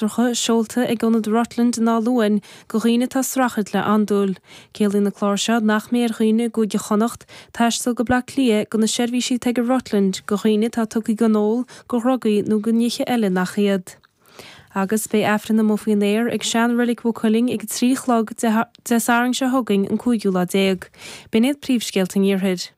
cláracha seolta ag ionad Rutland in Áth Luain go dhaoine atá ag streachailt le andúil. Ciallaíonn na cláir seo nach mbeidh ar dhaoine i gCúige Chonnacht taisteal go Bleá Cliath go na seirbhísí atá ag an Rutland go dhaoine atá tugtha don ól, go dhrugaí nó go nithe eile nach iad. Agus beidh Aifreann amuigh faoin aer ag seanreilig Mhaigh Cuilinn ag a trí chlog Dé Sathairn seo chugainn an cúigiú lá déag. B'in iad príomhscéalta an Iarthair.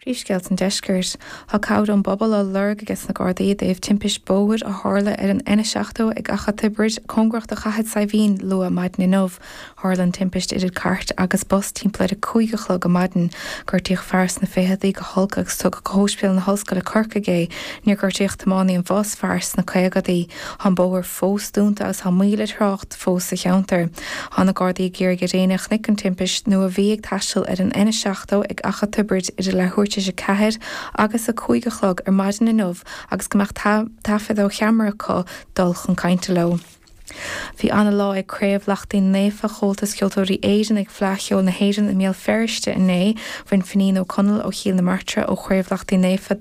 Príomhscéalta an Deiscirt. Tá cabhair ón bpobal á lorg aige sna Gardaí i dtaobh timpist bóthair a tharla ar an N70 ag Achadh Tiobraid, cóngarach do Chathair Saidhbhín, luath maidin inniu. Tharla an timpist idir cairt agus bus timpeall ar a cúig a chlog ar maidin. Gortaíodh fear sna ficheadaí go holc agus tugadh go hÓispidéal na hOllscoile Corcaigh é. Níor gortaíodh tiománaí an bhus, fear sna caogadaí. Tá an bóthar fós dúnta agus tá moill ar thrácht. fós sa cheantar. Tá na Gardaí ag iarraidh ar éinne a chonaic an timpist nó a bhí ag taisteal ar an N70 ag Achadh Tiobraid idir leathuair tar éis a ceathair agus a cúig a chlog ar maidin inniu agus go mbeadh taifead ó cheamara acu dul chun cainte leo. Bhí ana-lá ag Craobh Lachtaín Naofa Comhaltas Ceoltóirí Éireann ag Fleadh Cheoil na hÉireann i mBéal Feirste inné. Bhain Finín Ó Conaill ó Chill na Martra ó Chraobh Lachtaín Naofa,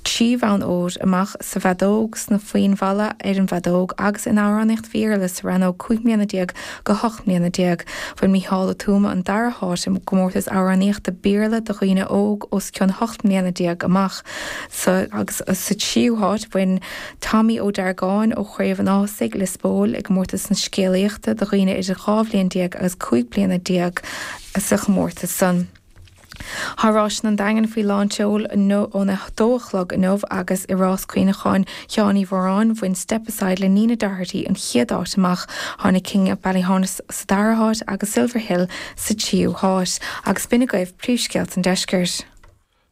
trí bhonn óir, amach sa bhfeadóg, sna foinn mhalla, ar an bhfeadóg, agus in amhránaíocht Béarla sa rannóg cúig mbliana déag go hocht mbliana déag. Bhain Mícheál Ó Tuama an dara háit i gcomórtas amhránaíochta Béarla do dhaoine óg os cionn hocht mbliana déag amach, agus sa tríú háit bhain Tommy Ó Deargáin ó Chraobh an Ághasaigh, Lios Póil, i gcomórtas na scéalaíochta do dhaoine idir dhá bhliain déag agus cúig bliana déag sa chomórtas san. Thá Ráiseanna an Daingin faoi lán-tseol óna 2 a chlog inniu agus i rás Cuimhneacháin Sheáin Uí Mhoráin, bhain Step Aside le Nina Doherty an chéad áit amach, tháinig King of Ballyhaunis sa dara háit agus Silver Hill sa tríú háit. Agus b'in agaibh príomhscéalta an deiscirt.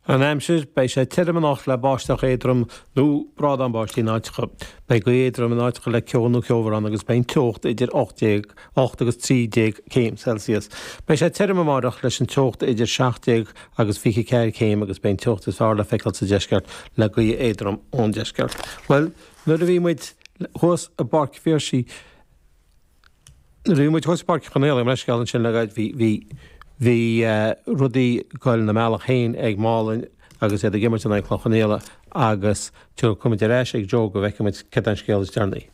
An aimsir, Beidh sé tirim anocht le báisteach éadrom nó brádán báistí in áiteacha. Beidh gaoth éadrom in áiteacha le ceo nó ceobhrán agus beidh an teocht idir 18 8 agus 13 céim Celsius. Beidh sé tirim amáireach leis an teocht idir 17 agus 24 céim agus beidh an teocht is fearr le feiceáil sa deisceart le gaoth éadrom ón deisceart. Bhuel, nuair a bhí muid thuas i bPáirc Phiarsaigh, nuair a bhí muid thuas i bPáirc Chonghaile, mo leithscéal ansin le Joe, bhí, bhí, bhí, eh, rudaí goil na mbealach féin ag Málainn, agus iad ag imirt in aghaidh Chloich Cheann Fhaola agus tá, gabhfaidh muid ar ais ag Joe go bhfeicimid céard é an scéal is deireanaí.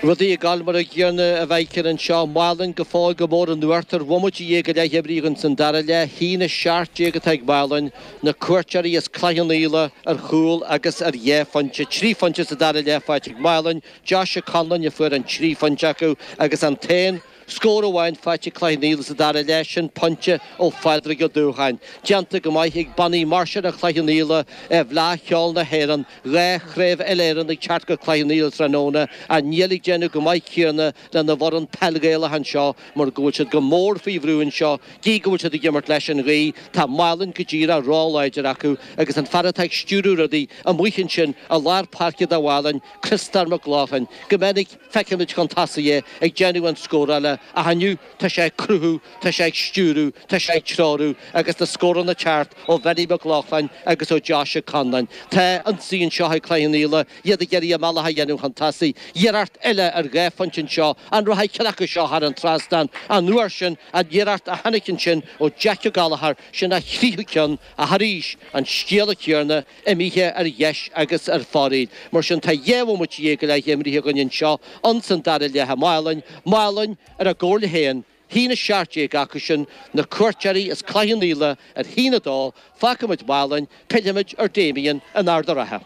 Rudaí ag dul mar an gcéanna a bheidh anseo. Málainn go fóill go mór in uachtar bhomaite dhéag go leith imrithe ins an dara leath. A haon 17 atá ag Málainn, na cuairteoirí as Cloich Cheann Fhaola, ar chúl agus ar dhá phointe, trí phointe sa dara leath faighte ag Málainn, Josh Conlon a fuair an trí phointe acu agus an t-aon Scór amháin faighte ag Cloich Cheann Fhaola sa dara leath, sin pointe ó Phádraig Ó Dúbhgáin. Déanta go maith ag bannaí máirseála Chloich Cheann Fhaola i bhFleadh Cheoil na hÉireann, dhá chraobh uile-Éireann ag teacht go Cloich Cheann Fhaola tráthnóna, ach níl ag déanamh chomh maith céanna lena bhfoireann peil Ghaelach anseo mar go bhfuil siad go mór faoi bhrú anseo, gí go bhfuil siad ag imirt leis an ghaoth, tá Málainn go díreach róláidir acu agus an fear atá ag stiúrú rudaí amuigh ansin i lár páirce do Mhálainn, Criostóir Mac Lochlainn, go minic. Feicimid chun tosaigh é ag déanamh an scórála ach inniu, tá sé ag cruthú, tá sé ag stiúrú, tá sé ag treorú, agus na scóranna ag teacht ó Bhenny Mac Lochlainn agus ó Josh Ó Conláin. Tá ionsaí anseo ag Cloich Cheann Fhaola, iad ag iarraidh a mbealach a dhéanamh chun tosaigh. Iarracht eile ar dhá phointe anseo, an rachaidh ceann acu seo thar an trasnán, an uair sin an iarracht a tháinig ansin ó Jeaic Ó Gallachóir, sin a thríú ceann, ach arís, an scéal céanna, imithe ar dheis agus ar foraíl. Mar sin, tá dhá bhomaite dhéag go leith imrithe againn anseo, ins an dara leath i Málainn, Málainn ar a gcomhairle féin, a haon a 17 acu sin, na cuairteoirí, is Cloich Cheann Fhaola ar a haon a 2, fágfaimid Málainn, pillfimid ar Damien in Ard a' Rátha.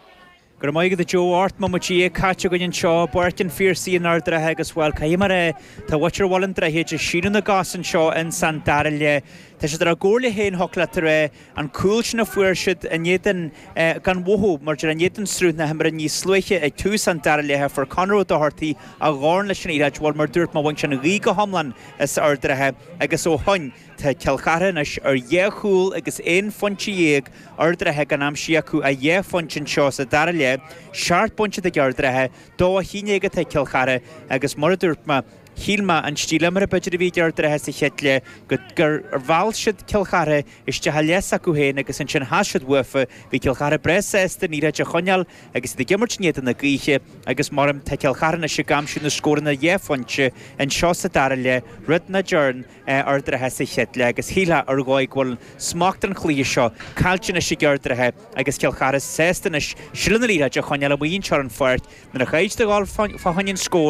Go raibh maith agat a Joe, ocht mbomaite dhéag caite againn anseo, i bPáirc an Phiarsaigh in Ard a' Rátha agus, bhuel, caithfidh mé a rá, tá muintir Bhaile an Droichid ag síneadh na gcos anseo ins an dara leath. Tá siad ar a gcomhairle féin, ach tar éis. an chúil sin a fuair siad in éadan gan mhothú mar a déarfá in éadan sruth na himeartha níos luaithe ag tús an dara leath Fuair Conchúr Ó Dochartaigh a dhorn leis an liathróid bhuel mar a dúirt mé bhain sé an ghaoth go hiomlán as Ard a' Rátha agus ó shoin tá Cill Chartha anois ar dhá chúl agus aon phointe dhéag Ard a' Rátha gan aimsithe acu ach dhá phointe anseo sa dara leath seacht bpointe ag Ard a' Rátha dó a haon déag atá ag Cill Chartha agus mar a dúirt mé Shíl mé, an stíl imeartha b'fhéidir a bhí ag Ard a' Rátha sa chéad leath go, gur, mheall siad Cill Chartha isteach i leath s'acu féin agus ansin chas siad uafa. Bhí Cill Chartha breá sásta an liathróid a choinneáil agus iad ag imirt in éadan na gaoithe agus mar a deirim tá Cill Chartha anois ag aimsiú na scóranna dhá phointe anseo sa dara leath rud nach dtearn Ard a' Rátha sa chéad leath agus shíltheá ar dhóigh go bhfuil smacht an chluiche seo caillte anois ag Ard a' Rátha agus Cill Chartha sásta anois seilbh na liathróide a choinneáil amuigh anseo ar an pháirc nuair a chaid de dhul fá choinne an scóir